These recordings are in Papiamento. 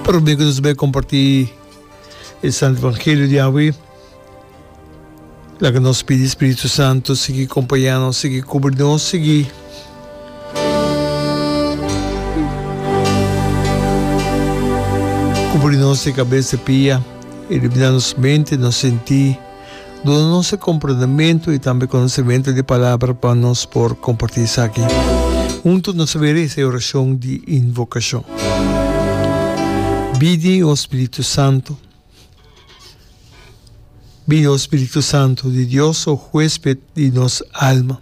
Pero bien cu nos bai comparti e Santo Evangelio di awe, laga nos pidi Spiritu Santo sigui compaña nos, sigui cubri nos, sigui cubri nos di cabes te pia, ilumina nos mente, nos senti. Duna nos e komprendementu i tambe konosementu di e palabra pa nos por kompartí esaki huntu. Nos a bira esta e orashon di invokashon, Bini, o Spiritu Santu! Bini, o Spiritu Santu di Dios, o Huesped di nos alma!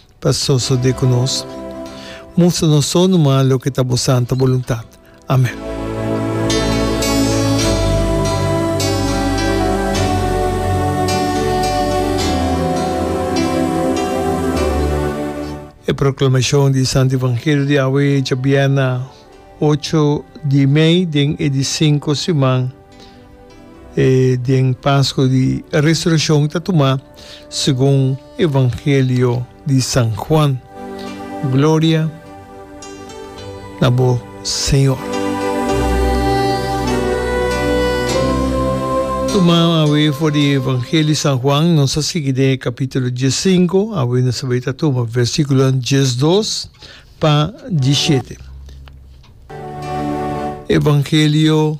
ta sosode ku nos. Mustra nos so numa loke ta bo santu boluntat. Amen. E proklamashon di Santu Evangelio di awe djabièrnè ocho di mei den e di sinku siman. E den Pasco di Resurreccion ta tuma segun Evangelio di San Juan. Gloria na bo Señor. Tuma awe for di Evangelio San Juan, nos a sigui den e capítulo diescinco, awe nos awe ta tuma versículonan diesdos pa diesiete. Evangelio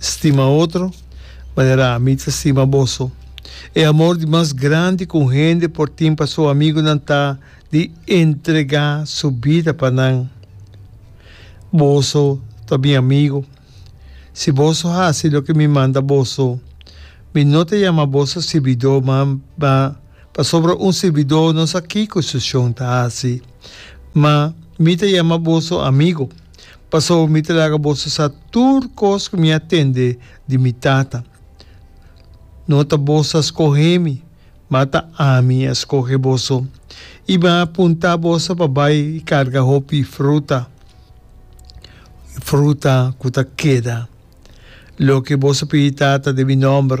Stima otro, manera ami ta stima boso. E amor di mas grandi ku un hende por tin pa su amigunan ta di entregá su bida pa nan. Boso ta mi amigu, si boso hasi loke mi manda boso. Mi no ta yama boso sirbidó, mamba pasobra un sirbidó no sa kiko su shon ta hasi. Ma mi ta yama boso amigu. Pasobra mi ta laga boso sa tur kos ku mi a tende di mi Tata. No ta boso a skohe mi, ma ta ami a skohe boso, i mi a punta boso pa bai i karga hopi fruta, fruta ku ta keda. Loke boso pidi Tata den mi nòmber,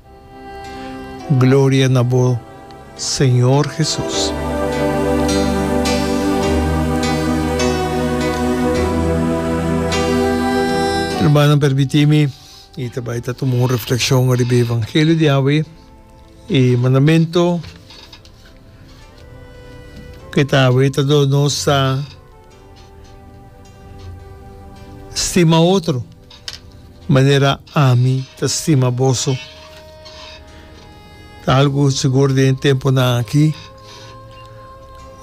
Gloria na bo Señor Jesus. Hermanonan permiti mi y ta bay ta tuma un reflexion riba e evangelio di awe. E mandamento que ta awe ta dor nos sa Stima otro manera ami ta stima boso. Ta algu sigur den e tempunan aki.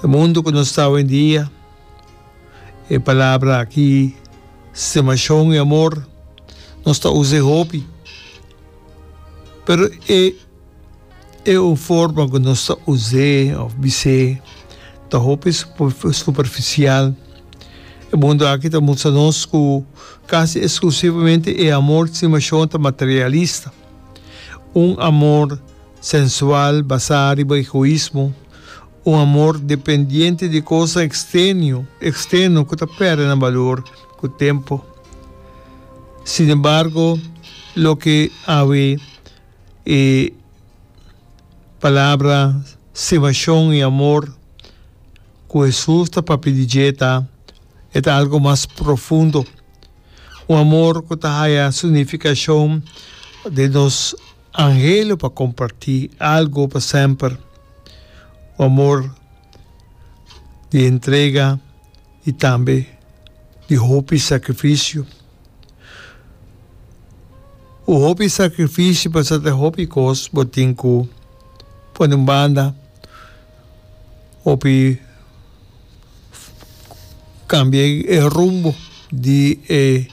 E mundu ku nos ta awendia, e palabra aki, stimashon i amor, nos ta usa e hopi. Pero e. E un forma ku nos ta us'é òf bis'é ta hopi superfisial. E mundu aki ta mustra nos ku kasi eksklusivamente e amor di simashon ta materialista, un amor sensual basá riba egoismo, un amor dependiente di kosnan eksternio eksterno ku ta pèrdè nan balor ku tempu. Sinembargo, loke awe. e palabra sivashon i amor ku Hesus ta papia di dje ta e ta algu mas profundo, un amor ku ta haya su nifikashon den nos anhelo pa kompartí algu pa semper, un amor di entrega i tambe di hopi sakrifisio. Cu hopi sacrifishi pasate hopi cos bo tin cu pone un banda, hopi cambia e rumbo di e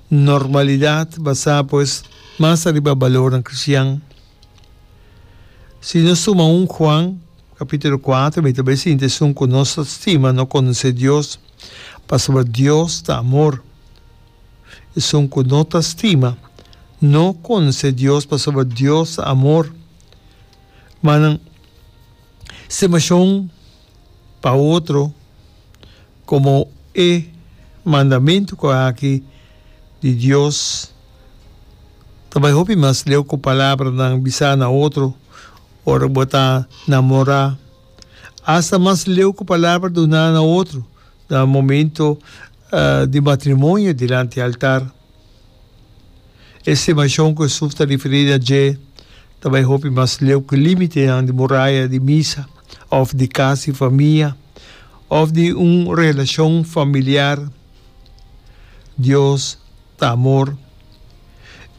normalidad basa pues mas ariba balornan cristian. Si nos suma un Juan capitulo cuatro mi ta bay sinti esun cu nos ta stima no conoce Dios pasobra Dios ta amor. Esun ku no ta stima, no konse Dios pasobra Dios ta amor. Manan, stimashon pa otro, komo e mandamentu ku aki di Dios, ta bai hopi mas leu ku palabranan bisa na otro ora bo ta namorá. Asta mas leu ku palabra duná na otro na momentu di matrimonio dilanti altar. E stimacion cu Jesús ta referi na dje ta bay hopi mas leu cu limitenan di muraya di misa of di cas di famia of di un relacion familiar. Dios ta amor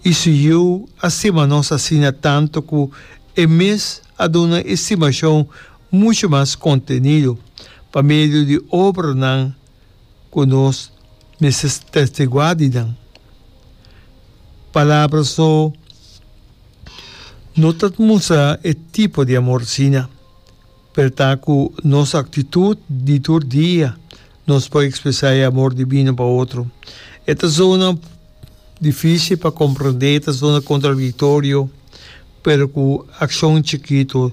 y su Yu a stima nos asina tanto cu e mes a duna e stimacion mucho mas contenido pa medio di obranan. ku nos mester testiguá di nan palabra. So no ta mustra e tipo di amor asina, pero ta ku nos aktitut di tur dia nos por ekspresá e amor divino pa otro. E ta zona difísil pa komprendé, e ta zona kontradiktorio, pero ku akshon chikitu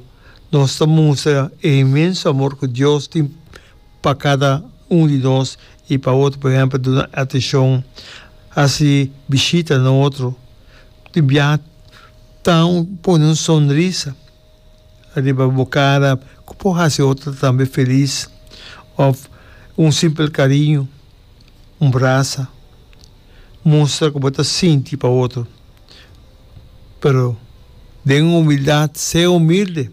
nos ta mustra e inmenso amor ku Dios tin. pa kada un di nos i pa otro, por ehempel duna atenshon, hasi bishita na otro, di biaha ta un pone un sonrisa riba bo kara ku por hasi otro tambe felis òf un simpel kariño, un brasa mustra ku bo ta sinti pa otro, pero den humildat, se humilde.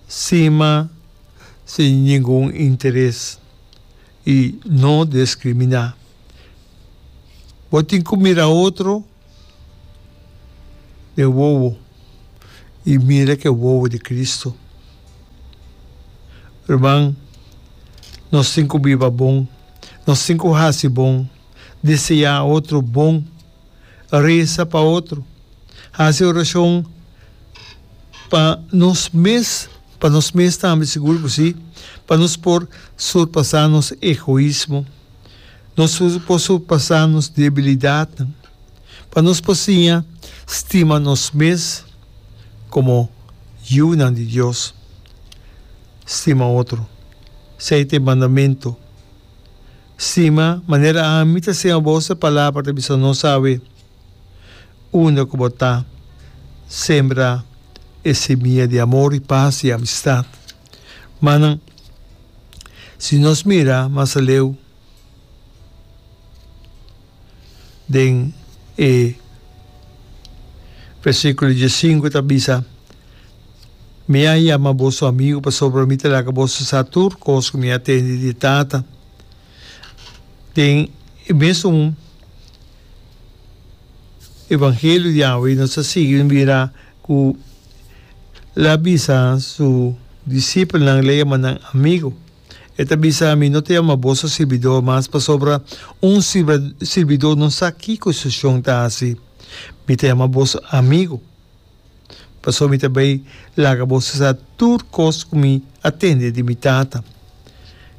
Sima sin ningun interes i no diskriminá. Bo tin ku mira otro den wowo i mira ku e wowo di Kristu. Ruman, nos tin ku biba bon, nos tin ku hasi bon, deseá otro bon resa pa otro, hasi orashon pa nos mes, pa nos mes tambe, sigur ku si, pa nos por surpasá nos egoismo, nos por surpasá nos debilidatnan, pa nos por siña stima nos mes komo yunan di Dios. Stima otro. Esei ta e mandamentu. Sima manera ami ta sema bos, e palabra ta bisa nos awe, Unda ku bo ta, sembra e simia di amor i pas i amistat. Mannan, si nos mira mas aleu. den e versiculo diescinco ta bisa, Mi a yama boso amigo pasobra mi ta laga boso sa tur cos cu mi a tende di e Tata. Den e mes un evangelio di awe nos a sigui mi bira cu el a bisa su discipelnan el a yamanan amigo. E ta bisa, Mi no ta yama boso sirbidó mas, pasobra un sirbidó no sa kiko su shon ta hasi. Mi ta yama boso amigu, pasobra mi ta bai laga boso sa tur kos ku mi a tende di mi Tata.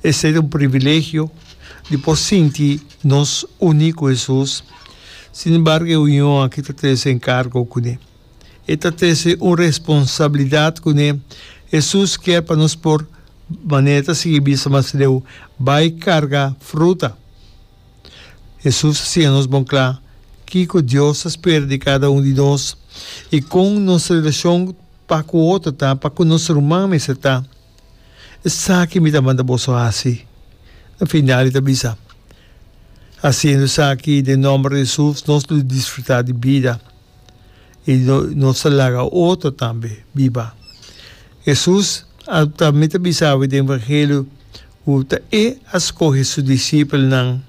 Esei ta un privilegio di por sinti nos uní ku Hesus. Sinembargo, e union akí ta trese enkargo kuné. E ta trese un responsabilidat kuné Hesus kier pa nos por, manera ta sigui bisa mas leu, bai karga fruta. Hesus a siña nos bon kla kiko Dios ta spera di kada un di nos i kon nos relashon pa ku otro ta, pa ku nos ruman mester ta. Esaki mi ta manda boso hasi, na final e ta bisa. Hasiendo esaki den nòmber di Hesus nos lo disfrutá di bida. y no nos a laga otro tambe biba. Hesus a tambe ta bisa awe den Evangelio cu ta e a scoge su discipelnan.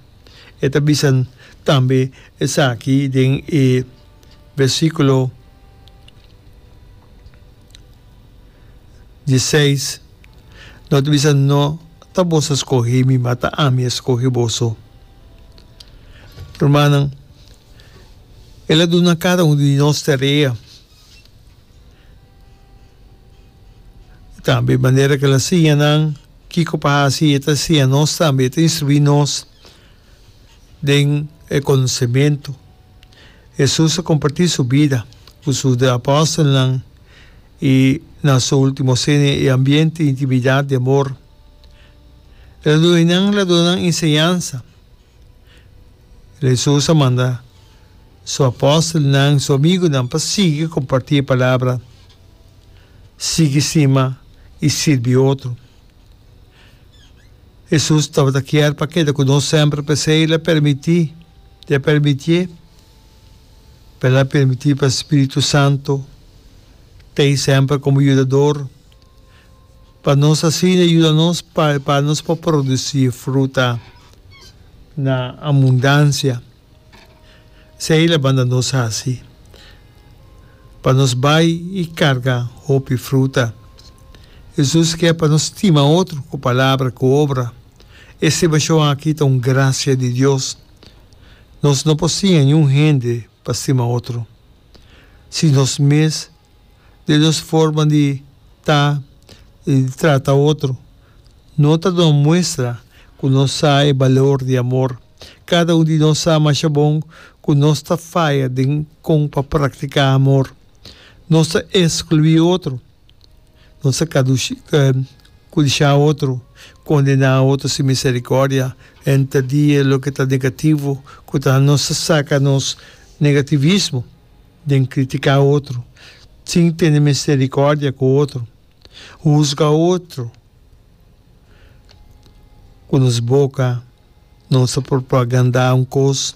E ta bisa tambe esaki den e versiculo dieseis, No ta bisa, No ta boso a scoge mi, ma ta ami a scoge boso. Rumannan, el a duna kada un di nos tarea. Tambe manera ku el a siña nan kiko pa hasi, e ta siña nos tambe, e ta instruí nos den e konosementu. Hesus a kompartí su bida ku su apòstelnan i na su último sene e ambiente, intimidat, di amor. El a duna nan, el a duna nan enseñansa. Jesus a manda su apòstelnan, su amigunan, pa sigui kompartí e palabra, sigui stima i sirbi otro. Jesus tabata kier pa keda ku nos semper, p'esei el a permití, i a permitié, pa el a permití pa spiritu santu t'ei semper komo yudador. Pa nos asina yuda nos pa e panos por produci fruta na abundancia. Esei la banda nos haci pa nos bay y carga hopi fruta. Hesus kier pa nos stima otro cu palabra, cu obra. E estimacion aki ta un gracia di Dios. Nos no por siña niun hende pa stima otro, si nos mes den nos forma di ta i di trata otro, no ta duna muestra ku nos sa e balor di amor. Kada un di nos sa masha bon ku nos ta faya den kon pa praktiká amor. Nos ta eskluí otro, nos ta kudishá otro, kondená otro sin miserikòrdia, henter di e loke ta negativo ku ta nos ta saka nos negativismo. Den criticá otro, sin tene misericordia cu otro, huzga otro cu nos boca, nos a propagandá un cos,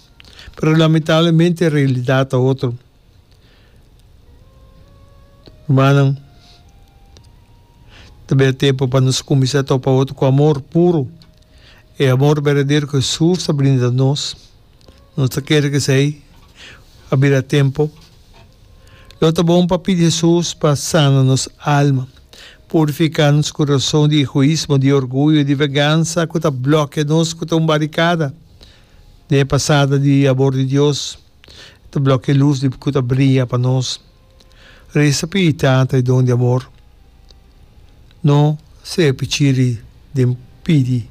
pero lamentablemente realidad ta otro. Rumannan, ta bira tempo pa nos cuminsa topa otro cu amor puro, e amor berdadero cu Jesus ta brinda nos. Nos ta kere ku esei a bira tempu. Lo ta bon pa pidi Hesus pa sana nos alma, purifiká nos kurason di egoismo, di orguyo, di vegansa ku ta blòkia nos, ku ta un barikada den e pasada di abor di Dios, ta blòkia e lus ku ta bria pa nos. Resa pi e tata e don di amor, no sea pi chiri den pidi.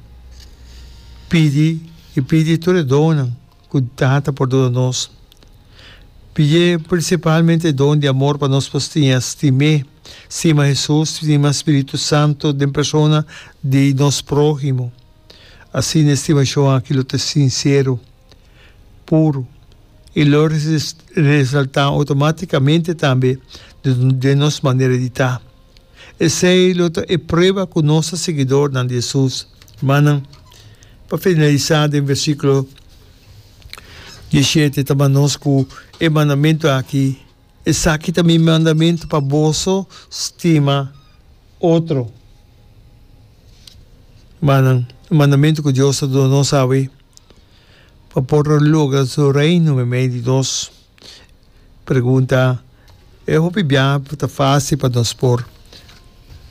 Pidi y pidi tur e donnan cu e tata por duna nos. Pidié principalmente e don di amor pa nos por stiña stim'é, stima Jesus, stima Spiritu Santo den persona di nos prohimo. Asina e stimacion aki lo ta sincero. puru i lo resaltá automátikamente tambe den nos manera di ta. Esei lo ta e prueba ku nos ta siguidornan di Hesus. Mannan, pa finalisá den versíkulo dieshete ta manda nos ku e mandamentu aki, Esaki ta mi mandamentu, pa boso stima otro. Mannan, e mandamentu ku Dios ta duna nos awe. Pa por logra su Reino me mei di nos pregunta, e hopi bia ta fácil pa nos por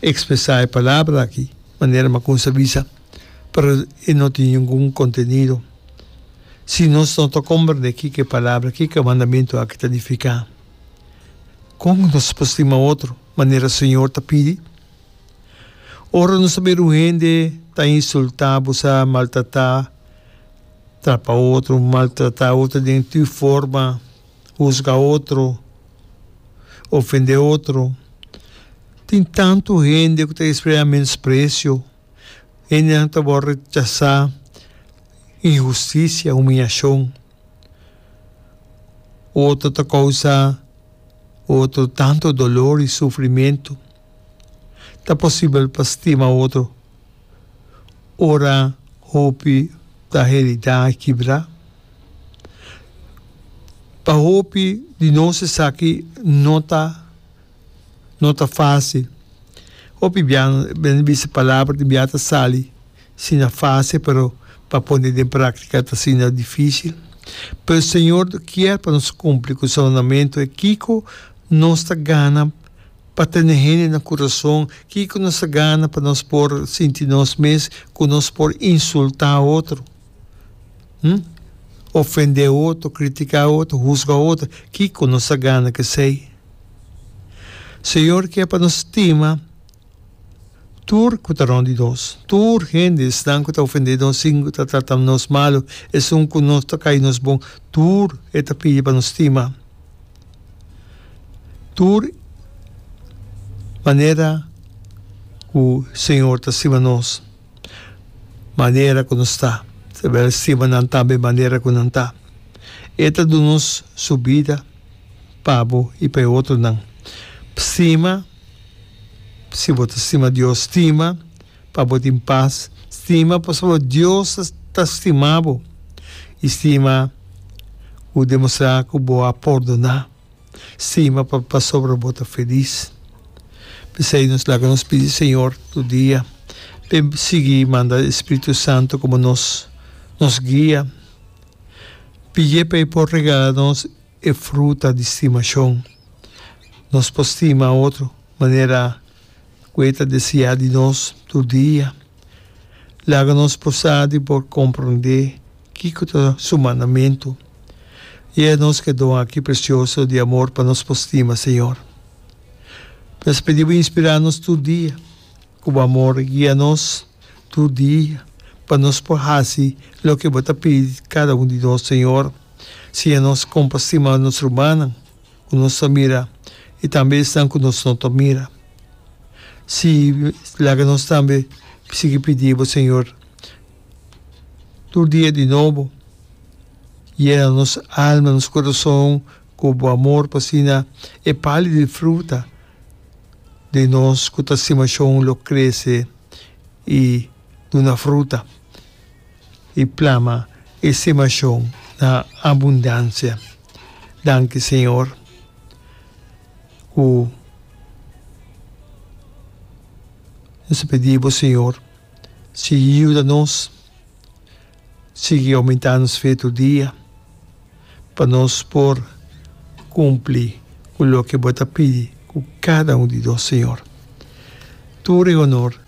expresá e palabra aki manera Makunsa a bisa, pero e no tin ningun contenido. Si nos no ta comprendé kiko e palabra, kiko e mandamiento aki ta nifiká, kon nos por stima otro manera Señor ta pidi? Ora nos a mira un hende ta insultá bo sa, maltratá trapa otro, maltrata otro den tur forma, husga otro, ofende otro. Tin tantu hende ku ta sprea menosprecio, hendenan ku ta wòrdu rechasá, inhustisia, humiashon. Otro ta kousa otro tantu dolor i sufrimentu. Ta posibel pa stima otro ora hopi ta heridá i kibrá? Pa hopi di nos esaki no ta no ta fásil. Hopi bia nan bisa palabra di bia ta sali asina fásil, pero pa pone den práktika ta asina difísil. Pero e señor kier pa nos kumpli ku salunamentu. Kiko nos ta gana Pa tene hende na kurason, kiko nos a gana pa nos por sinti nos mes ku nos por insultá otro? Hm? Ofendé otro, kritiká otro, husga otro, kiko nos a gana ku esei? Señor ke pa nos stima tur ku ta rònt di nos. Tur hende, esnan ku ta ofendé nos i ku ta trata nos malu, esun ku nos ta kai nos bon, tur e ta pidi pa nos stima. Tur manera ku Señor ta stima nos, manera ku nos ta, Él stima nan tambe manera ku nan ta. E ta duna nos su bida pa bo i pa e otronan. Stima, si bo ta stima Dios, stima. Pa bo tin pas, stima pasobra Dios ta stima bo i stima ku demostrá ku bo a pordoná. Stima pasobra bo ta felis. P'esei nos laga nos pidi Señor tur dia pa e sigui manda e Spiritu Santu komo nos nos guia. Pidié pa e por regala nos e fruta di stimashon. Nos por stima otro manera ku e ta desiá di nos tur dia. Laga nos posá di por komprondé kiko ta Su mandamentu. Gie nos ku e don aki presioso di amor pa nos por stima, Señor. Nos pidi Bo inspirá nos tur dia ku Bo amor, guia nos tur dia pa nos por hasi loke Bo ta pidi di kada un di nos, Señor. Siña nos kon pa stima nos rumannan. ku nos ta mira i tambe esnan ku nos no ta mira. Si, laga nos tambe sigui pidi bo, Señor, tur dia di nobo. Yena nos alma, nos kurason ku bo amor, pa asina e pali di fruta den nos ku ta stima shon lo krese i duna fruta. i plama e semashon na abundansia. Danki Señor ku nos ta pidi bo Señor sigui yuda nos, sigui oumentá nos fe tur dia pa nos por kumpli ku loke bo ta pidi ku kada un di nos Señor. Tur e honor